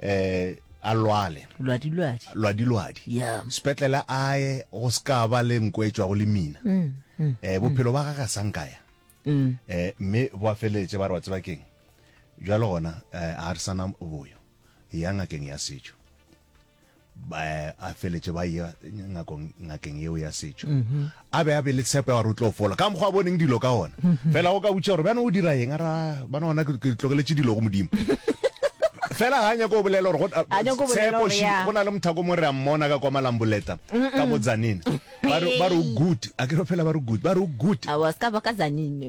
eh a lwale lwadi lwadi lwadi lwadi yeah. sepetlele a ye go se ka ba le nko e tšwago le mina mm, mm, eh mm. bophelo ba gaga sa nkaya mm. eh mme ba feletse ba re wa tseba keng jalo gona eh, a re sana boyo ya ngakeng ya setšo ba a feletše ba ya ngakong ngakeng yeo ya setšo mhm. a be a be le tshepo ya gore o tlo fola ka mokgwa a boneng dilo ka ona mhm. fela go ka butša gore bjana o dira eng ara bana ona ke tlogeletše dilo go modimo fela ga nyako o bolela gore tshepoši go na le mothako mo re a mmona ka kwa malamboleta ka bo tsanene ba re o good a ke re fela ba re good ba re o good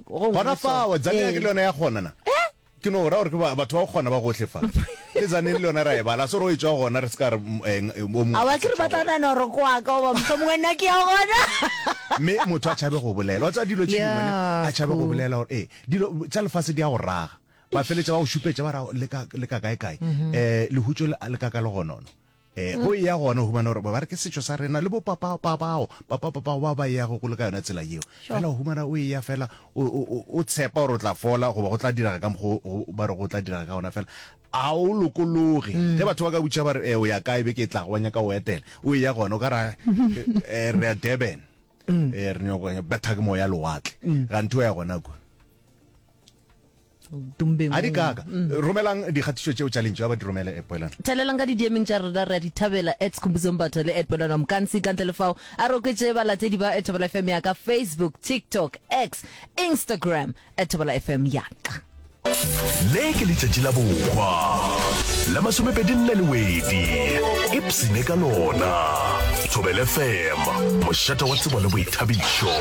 gona fao tsanene ke le yone ya gona na eh? Ke no ra gore ke batho ba go kgona ba gohle fa. Le zaneng le yona ra e bala. A se ro e tšwa gona re se ka re eng o mongwe. Awa ke re ba tla nana gore ke wa ka oba mohlomongwe nna ke ya gona. Mme motho a tšhabe go bolela. Wa tseba dilo tše dingwe ne a tšhabe go bolela gore ee dilo tša lefase di ya go raga. Ba feletša ba go šupetša ba ra le ka le ka kae kae. Lehutšo le ka ka le gonono. Ee, go eya gona o humana gore ba re ke setšo sa rena le bo papapa bao papapapao ba ba eyago go le ka yona tsela yeo fela o humana o eya fela o- o o- o tshepa gore o tla fola goba go tla direga ka mokgwa o- o- ba re go tla direga ka gona fela a o lokologe ge batho ba ka butša ba re "Eh, o ya kae beke e tlago wa nyaka o etela o eya gona o ka ra eh, re ya durban Eh, re nyaka go ya- betha ke moya lewatle gantho o ya gona kua a di kaka romelang dikgatišo tšeo tša lentšu a ba di romele at poelano thelelang ka didiemeng tša rena re a di thabela at skhumbudzombatha le at poelano mkansi ka ntle le fao a re oketše balatedi ba at thobela fm ya ka facebook tiktok x instagram at thobela fm ya ka le ke letšatši la bokwa la masomepedi nne le wedi ipsene ka lona thobele fem mošata wa tsebo le boithabišo